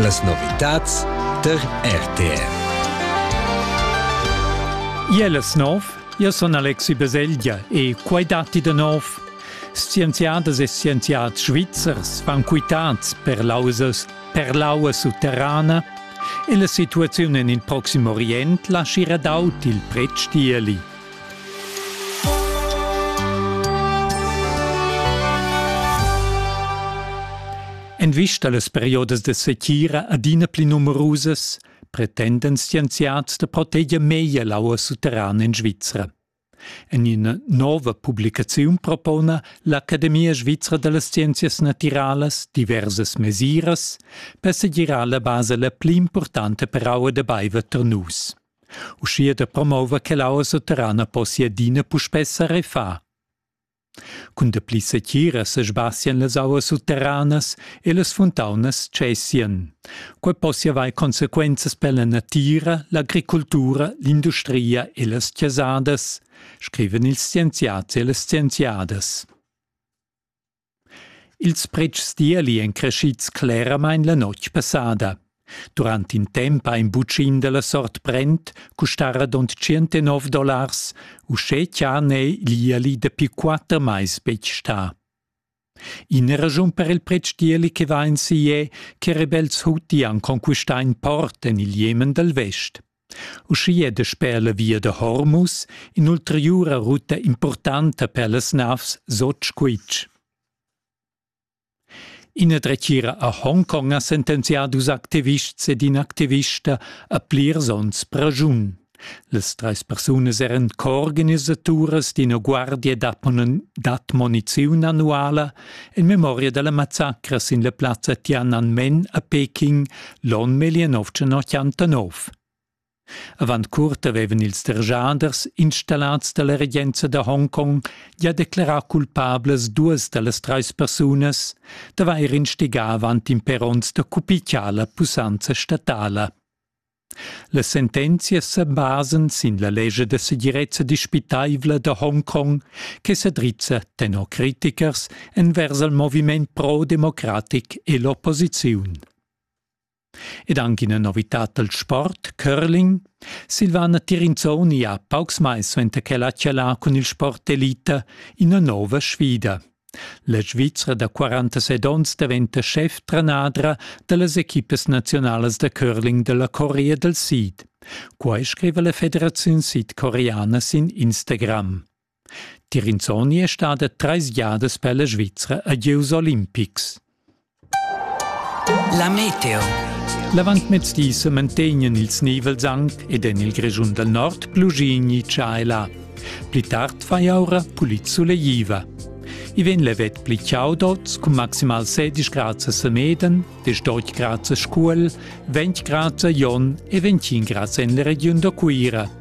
Las novitads tar RTR. Iel es nov, io sun Alexi Baselgia e quai datti da nov. Scienziadas e scienziads svizzers van quitads per lausas, per l'aua sutterrana e la situaziun en il Proxim Orient laschira daut il pretstieli. En vista las periodas da setgira adina pli numerusas pretenden scienziads da proteger meglier l'aua sutterrana en Svizra. En ina nova publicaziun propona l'Academia svizra da las scienzias natiralas diversas mesiras per segirar la basa la pli importanta per aua da baiver tar nus. Uschia da promouver che l'aua sutterrana possia adina puspè sa refar. Cun dapli setgira sesbasian las auas sutterranas e las funtaunas cessian. Quai possia avair consequenzas per la natira, l'agricultura, l'industria e las chasadas, scrivan ils scienziads e las scienziadas. Ils pretschs d'ieli èn creschids cleramain la notg passada. Durant in temp ha in butschin da la sort Brent custà radund tschient dollars, uschè cha n'è l'ieli dapi quatter mais betg stà. Ina raschun per il pretsch d'ieli che va ensi è che rebels huti han conquistà in port en il Jemen dal vest. Uschia dasper la via da Hormus in'ulteriura ruta impurtanta per las navs Sotschuitg. Ina dretgira a Hongkong ha sentenzià dus activists ed in activista a plirs onns praschun. Las trais persunas eran coorganisaturas d'ina guardia d'admoniziun annuala En memoria della massacra sin la plazza Tiananmen a Peking l'on 1989. Avant curt avevan ils dergiaders installats dalla regenza da Hongkong ja declarà culpablas duas dallas treis persunas d'avair instigà avant imperonts da cupiciar la pussanza statala. Las sentenzias sa basan sin la lescha da segirezza dispitaivla da Hongkong che sa drizza tenor critichers envers il moviment pro-democratic e l'opposiziun. Ed anche ina novitad dal sport, curling. Silvana Tirinzoni ha paucs mais suenter ch'ella ha chalà cun il sport d'elita ina nova sfida. La Svizra da 46 onns daventa schef-trenadra da las equipas naziunalas da curling da la Corea dal Sid. Quai scriva la Federaziun sidcoreana sin Instagram. Tirinzoni è stada trais giadas per la Svizra a gieus olimpics. La meteo. L'avantmezdi semantegnan ils nivels anc ed en il Grischun dal Nord plugigni tschaila. Pli tard fa aura pulit sulegliva. I vegn levet pli chaudots cun maximal 16 grads a Semeden, 18 grads a Scuol, 20 grads a Jon e 21 grads en la regiun da Cuira.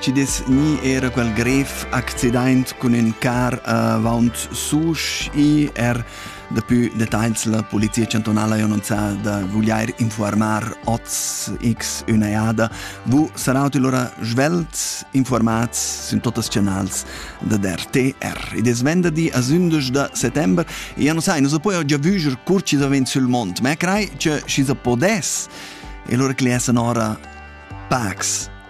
Ci dess ni era quel grev accident cun in car avaunt Susch i er daplü detagls la Polizia chantunala ha annunzià da vuglier informar oz x üna jada. Vu saraut lura svelt informats sin totas canals da RTR. Id es venderdi a 11 da settember e ja non sai, non so poi già vuger cur ci da ven sul mont, ma crei che ci sa podes e lura cliessa nora Pax